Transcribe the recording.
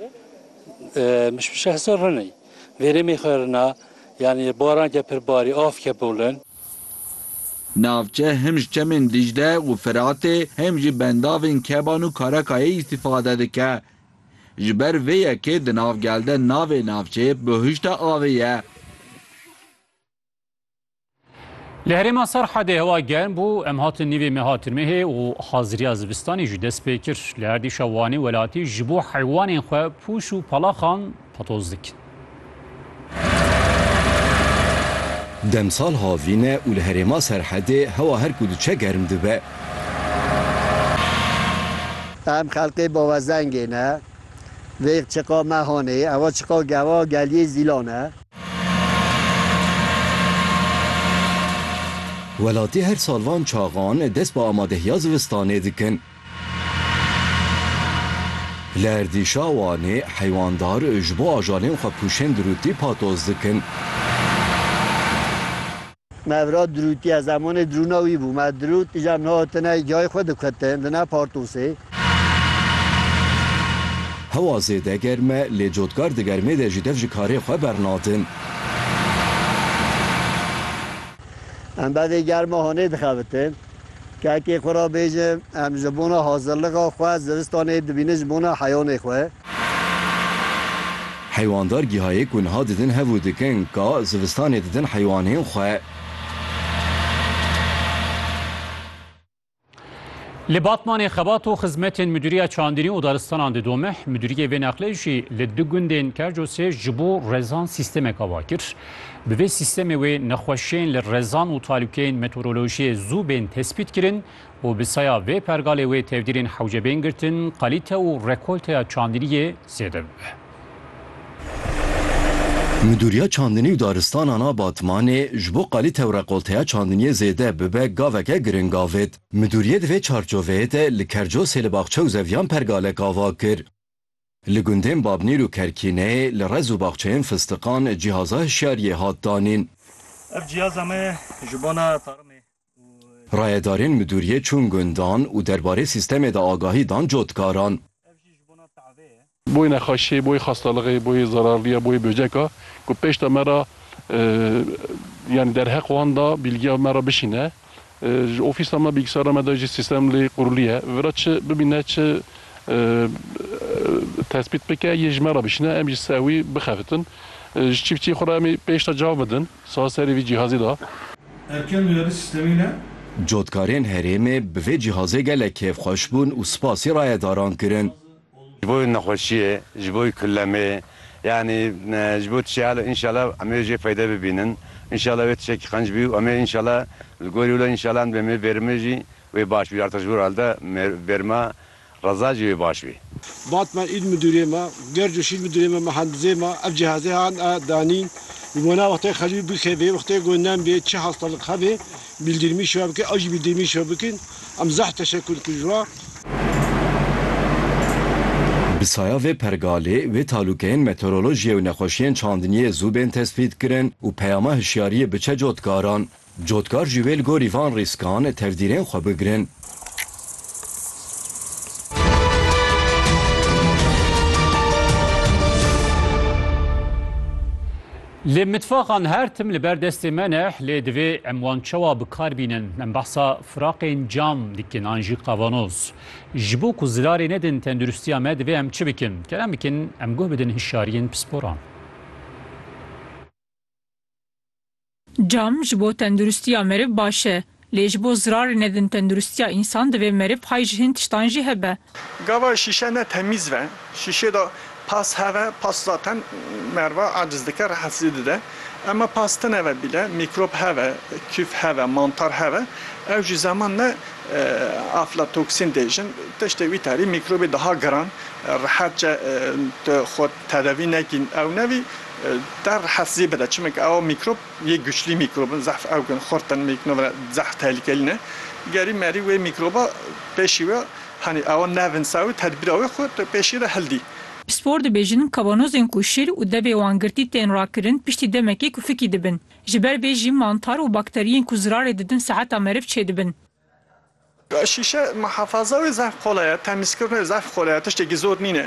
Min bi şexse rinî vêrêmê xwe rina yanî baran ke pir barî av ke bolin. Navçe him ji çemên Dîcle û Firatê him jî bendavên Keban û Karakayê îstîfade dike. Ji ber vê yekê di nav gel de navê navçeyê Bihuşta Avê ye. Li herêma Serhedê hewa germ bû, em hatin nîvê meha tirmehê û haziriya zivistanê jî dest pê kir. Li erdîşa Wanê welatî ji bo heywanên xwe pûş û palaxan patoz dikin. Demsal havîn e û li herêma Serhedê hewa her ku diçe germ dibe. Em xelkê bavazengê ne. Vêg çiqa me hanê. Ewa çiqa gewa geliyê Zîlan e. Welatî her sal van çaxan dest bi amadehiya zivistanê dikin. Li erdîşa Wanê heywandar ji bo ajalên xwe pûşên dirûtî patoz dikin. Mevrat dirûtiye zemanê dirûna wî bû. Me dirût îcar niha hatine cayê xwe diketin di nav partosê. Hewa zêde germ e lê cotkar di germê de jî dev ji karê xwe bernadin. Em bevê germa hanê dixebitin. Kekê xwe re bêje em ji bona hazirlixa xwe zivistanê dibînin ji bona heyanê xwe. Heywandar gihayê ku niha didin hev û dikin ka zivistanê didin heywanên xwe. Li Batmanê xebat û xizmetên Mudîriya Çandîrî û Daristanan di domeh. Mudîriyê vê neqlê jî li du gundên Kercosê ji bo rezan sîstemeke va kir. Bi vê sîstemê wê nexweşiyên li rezan û talûkeyên meteorolojiyê zû bên tespît kirin û bi saya vê pergalê wê tevdîrên hewce bên girtin, kalîte û rekolteya çandiniyê zêde bibe. Midûriya Çandinî û Daristanan a Batmanê ji bo kalîte û rekolteya çandiniyê zêde bibe gaveke giring avêt. Midûriyê di vê çarçoveyê de li Kercosê li Baxçe û Zeviyan pergalek ava kir. Li gundên Babnîr û Kerkîneyê li rez û baxçeyên fistiqan cîhaza hişyariyê hat danîn. Ev cîhaza me ye ji bona tarimê û. Rayedarên midûriyê çûn gundan û derbarê sîstemê de agahî dan cotkaran. Ev jî ji bona tavê ye. Boyê nexweşiyê, boyê xastalixê, boyê zararliya, boyê böceka ku pêşta me re yanî derheq wan da bîlgiya me re bişîne. Ji ofîsa me, bîlgisara me de jî sîstem lê qurulî ye. Vi ra çi bibîne, çi tespît bike yê ji me ra bişîne em ji ser wî bixebitin. Ji çîftçiyê xwe re em ê pêş de cav bidin saz serê vî cîhazê de. Erken duyarî sîstemî ne. Cotkarên herêmê bi vê cîhazê gelek kêfxweş bûn û spasî rayedaran kirin. Ji bo nexweşiyê, ji bo kulemê yanî ji bo tişeal înşala em ê jê feyde bibînin. Înşala wê tişekî qenc bî û em ê înşala li gorî wilo înşala em dibê bêrmê jî wê baş bî. Artaş Vural de bêrma Reza jî wê baş bî. Vat me il midûrê me, gerc û şîr midûrê me, mihendizê me ev cihazê han a danîn. Ji bo na wextê xelî bikevê, wextê ku nem bê, çi hastalık hebê, Bildirmî şiva bikin, ew jî bildirmî şiva bikin. Em zeh teşekur dikin ji wan. Bi saya vê pergalê, wê talûkeyên meteorolojiyê û nexweşiyên çandiniyê zû bên tespîtkirin û peyama hişyariyê biçe cotkaran. Cotkar jî wê li gorî van rîskan tevdîrên xwe bigirin. Lê mitfaxan her tim li ber destê me ne, lê divê em wan çawa bi kar bînin? Em behsa firaqên cam dikin an jî qavanoz. Ji bo ku zilarê nedin tendirustiya me divê em çi bikin? Kerem bikin em guh bidin hişyariyên pisporan. Cam ji bo tendirustiya meriv baş e. Lê ji bo zirarê nedin tendurustiya însan divê meriv hay ji hin tiştan jî hebe. Gava şîşe ne temîz ve, şîşê de pas heve, pas zaten meriva aciz dike, rehetsizî dide. Ema pas tine ve bîle, mîkrop heve, küf heve, mantar heve. Ew jî zeman ne aflatoksîn dê jin, tiştê wî tarî mîkrobê daha giran, rehetçe tu xwe tedewî nekî ew nevî te rehetsizî bide. Çimeke ew mîkrop. Yê güçlî mîkrobin zehf ew kin xurt in mîknob re zehf tehlikelî ne. Gerî merî wê mîkroba pêşî we hanî awa nevinsa wê tedbîra wê xwe tu pêşî re hildî. Pispor dibêjin kavanozên ku şîr û devê wan girtî tên rakirin piştî demekê ku fikî dibin. Ji ber vê jî mantar û bakteriyên ku zirarê didin seheta meriv çêdibin. Şîşe muhefaza wê zehf qolay e, temîzkirina wê zehf qolay e tiştekî zor nîne.